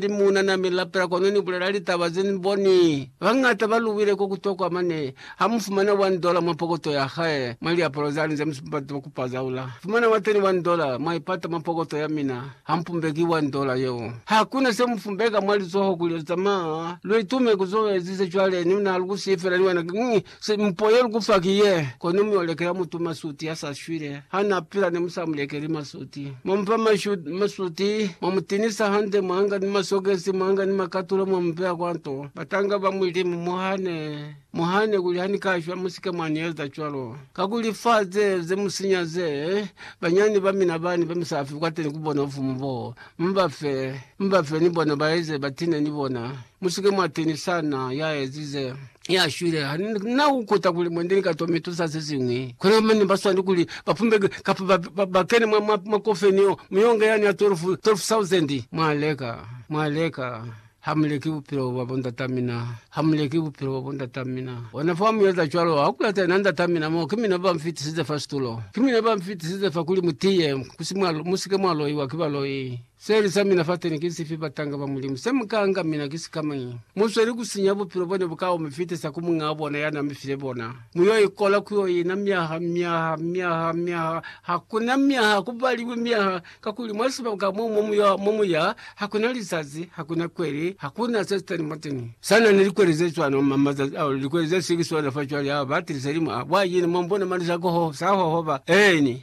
Ni muuna na mi lapela kono ni bulela litaba ze ni boni. Bañata ba luwile ko ku tokwa mane. Ha mu fumana one dollar mwa pokoto ya hae, mwa liapalo zani ze mu si bati ku pazaula, fumana wa teni one dollar, mwa i pata mwa pokoto ya mina. Ha mu pumbeki one dollar yeo. Ha ku na se mu pumbeka mwa lizoho kuli lu zamaa, lu itume ku zo ezize cwale. Ni na lu ku siifela ni wena. Simpo ye lukufa ki ye, kono mi olekela mutu masuti ya sa shwile. Ha na pila ne musa mulekeli masuti. Mwa mufa masuti, mwa mutinisa hande, mwa nga ni masokesi, mwa nga ni makatulo mwa mubeya kwa nto. Batanga ba Mulimu, muhane, muhane kuli ha ni ka shwa, musike mwa ni eza cwalo. Kakuli fa ze, ze mu sinya ze, banyani ba mina bani be musa fi kwateni ku bona bufumu bo, mu ba fe, mu ba fe ni bona ba eze batine ni bona. Musike mwa tinisa na ya ezize. ya shwile ha na ukuta kuli mwende ni ka tome tusa se singwi kuna mane ba swani kuli ba pumbe kapa ba, ba, ba kene mwa mwa mwa kofeni yo muyonga yani ya 12 12000 mwa leka mwa leka hamuleki bupilo bwa bondata mina hamuleki bupilo bwa bondata mina ona fa muyeza cwalo ha kulata ena ndata mina mo ki mina ba mfitisize fa situlo ki mina ba mfitisize fa kuli mutiye kusimwa musike mwa loiwa ki baloi Seli sa mina fateni ki sifi, batanga ba Mulimu? Se mu ka nga mina ki sikamañi? Mu sweli ku sinya bupilo bone bu ka omi fitisa ku Muñaa bona ya na mi file bona. Mu yo ikola ku yo ina myaha, myaha, myaha, myaha. Ha ku na myaha, ku baliwi myaha, kakuli mwa sibaka mo mu yo, mo mu ya, ha ku na lizazi, ha ku na kweli, ha ku na se si tani mwateni. Sa na ni likweli ze cwalo ma, mazazi ao, likweli ze si ki sona fa cwale, a ba tilisa limu a, Bwa yini mwa mbona mali za koho, sa hohoba? Eeni.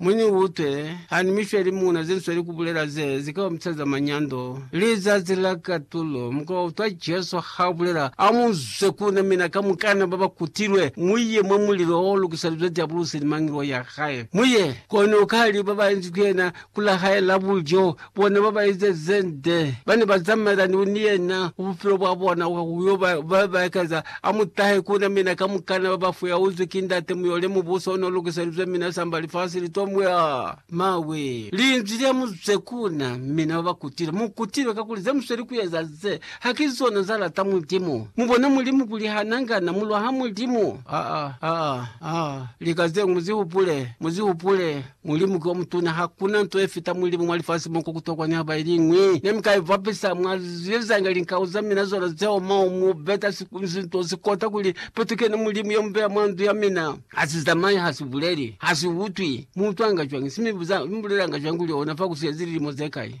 Mu ni utwe, ha ni mi fe limuna ze nsweli ku bulela ze zi ka omisa za manyando. Lizazi la katulo, mu ka utwa Jesu ha a bulela, A mu zwe ku na, mina kamukana ba ba kutilwe, mu ye mwa mulilo o lukiselizwe Diabulosi ni mangelo ya hae. Mu ye, kono ka li ba ba inzi ku yena ku la hae la bulyo. Bona ba ba eza ze nde ba ne ba zamaelani ni yena ku bupilo bwa bona kwa ku yo ba ba ba ekeza. A mu tahe ku na mina kamukana ba ba fuyauzwi ki Ndate, mu yo le Mubuso o n'o lukiselizwe mina samba lifasi li t'o mwa mawe. Linzwi lya mu zwe ku na, mina ba ba kutile. Mu kutile kakuli ze mu sweli ku eza ze, ha ki zona za lata Mulimu. Mu bona Mulimu kuli ha na nga na mu lwaha Mulimu? Aa, aa, aa. Lika ze ñwi mu zi hupule, mu zi hupule, Mulimu ki omutuna, hakuna nto yefita Mulimu mwa lifasi mo, kwa kutokwa nihaba iliñwi nemika ibapisa. Mwa zilizanga linkau zamina zona zeoma, mubeta sinto sikota kuli, Petu kene Mulimu yomubeya mwa ndu yamina. Hasizamayi, hasibuleli, hasiutwi. Muutwanga cwañi? Simibuzanga, mibulelanga cwañi kuli ona fa kusiezi lilimo zekai?